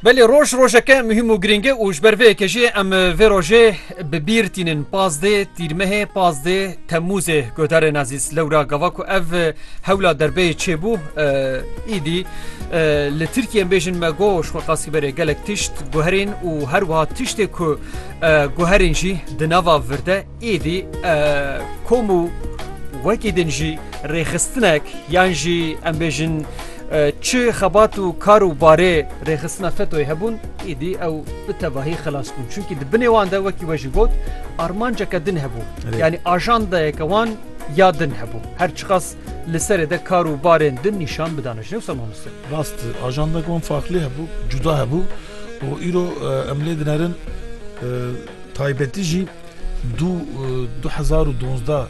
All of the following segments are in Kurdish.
Belê roj rojeke muhîm û girîng e û ji ber vê yekê jî em vê rojê bi bîr tînin. Pazdeh Tîrmehê, pazdeh Temmûzê guhdarên ezîz. Lewra gava ku ev hewla derbeyê çêbû îdî li Tirkiyê em bêjin me got ji xwe qasî berê gelek tişt guherîn û her wiha tiştê ku guherîn jî di nava vir de Êdî kom û wekî din jî rêxistinek yan jî em bêjin çi xebat û kar û barê rêxistina FETÖ'yê hebûn êdî ew bi tevahî xilas bûn. Çunkî di binê wan de wekî we jî got armanceke din hebû. Yanî ajandayeke wan ya din hebû. Her çiqas li serê de kar û barên din nîşan bidane ji newsa mamoste. Rast e ajandeke wan farklî hebû, cuda hebû û îro em lê dinerin taybetî jî Du du hezar û duwazdeh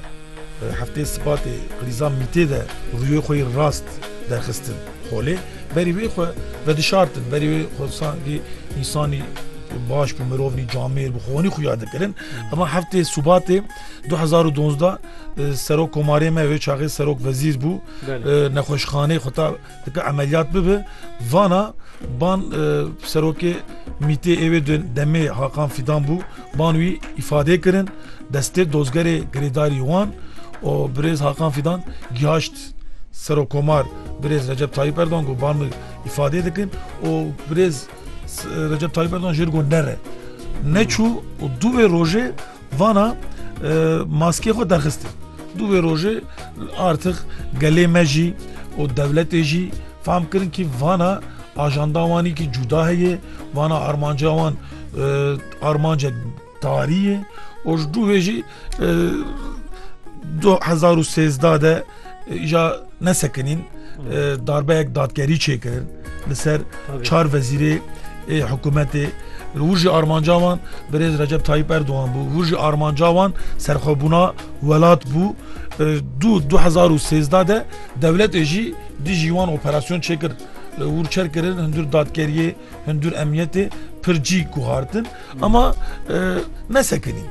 hefteyê Sibatê Rîza Mîtê de rûyê xwe yê rast derxistin holê. Berî wê xwe vedişartin, berî wê xwe sankî însanî baş bû, mirovnî camêr bû, xwenî xuya dikirin. Ema heftê Sibatê du hezar û duwazdeh Serok Komarê me wê çaxê Serok Wezîr bû, nexweşxaneyê xwe ta Dike emeliyat bibe vana ban e, serokê mîtê êvê demê Hakan Fidan bû ban wî îfadê kirin destê dozgerê girêdarî wan û birêz Hakan Fidan gihaşt serokomar birêz Recep Tayyip Erdogan got ban min îfadê dikin û birêz Recep Tayyip Erdogan jêr got nere neçû û dû vê rojê Vana maskê xwe derxistin. Dû vê rojê artix gelê me jî û dewletê jî fam kirin kî vana ajanda wanî kî cuda heye, vana armanca wan armanca tarî ye û ji dû vê jî 2013 de Îja nesekinîn darbeyek dadgerî çêkirin li ser çar vezîrê ê hikûmetê hûr jî armanca wan birêz Recep Tayyip Erdogan bû hûr jî armanca wan serxwebûna welat bû du 2013 de dewletê jî dijî wan operasyon çêkir hûr çerkirin hundir dadgeriyê Hundur emniyetê pir cî guhartin ama nesekinîn.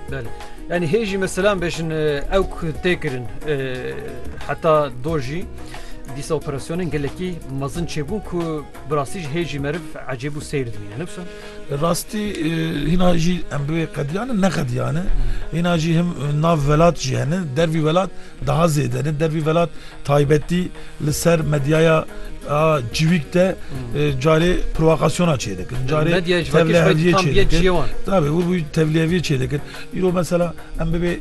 Yani hê jî meselan bejin ew tê kirin heta do jî dîsa operasyonên gelekî mezin çêbûn ku bi rastî jî hê jî meriv ecêb û seyr dimîne ne wisa? Rastî hîna jî em bivê qediyane ne qediyane hîna jî him nav welat jî hene dervî welat Daha zêde li dervî velat taybetî li ser medyaya civîk de carê provokasyona çêdikin. Carê tevliheviyê çêdikin. Tabi û bû tevliheviyê çêdikin. Îro mesela em bibê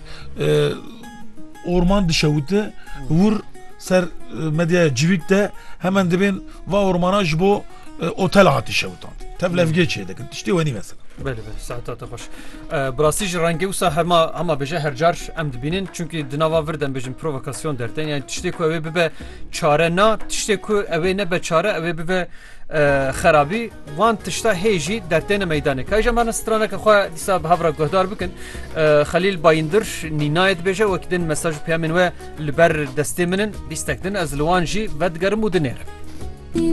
orman dişewite hûr ser medyaya civîk de hemen dibên va ormana ji bo otel hatî şewtan. Tev levgê çê dikin tiştê wenî mesela. Belê belê saeta te xweş. Bi rastî jî rengê wisa hema hema bêje her car em dibînin çunkî di nava vir dem bêjin provokasyon dertên yani tiştê ku ew ê bibe çare na tiştê ku ew ê nebe çare ew ê bibe xerabî wan tişta hê jî dertêne meydanê ka jî me straneke xwe dîsa bi hevra guhdar bikin xelîl bayindir nînayê dibêje wekî din mesaj peyamên we li ber destê min in bîstek din ez li wan jî vedigerim û dinêrim.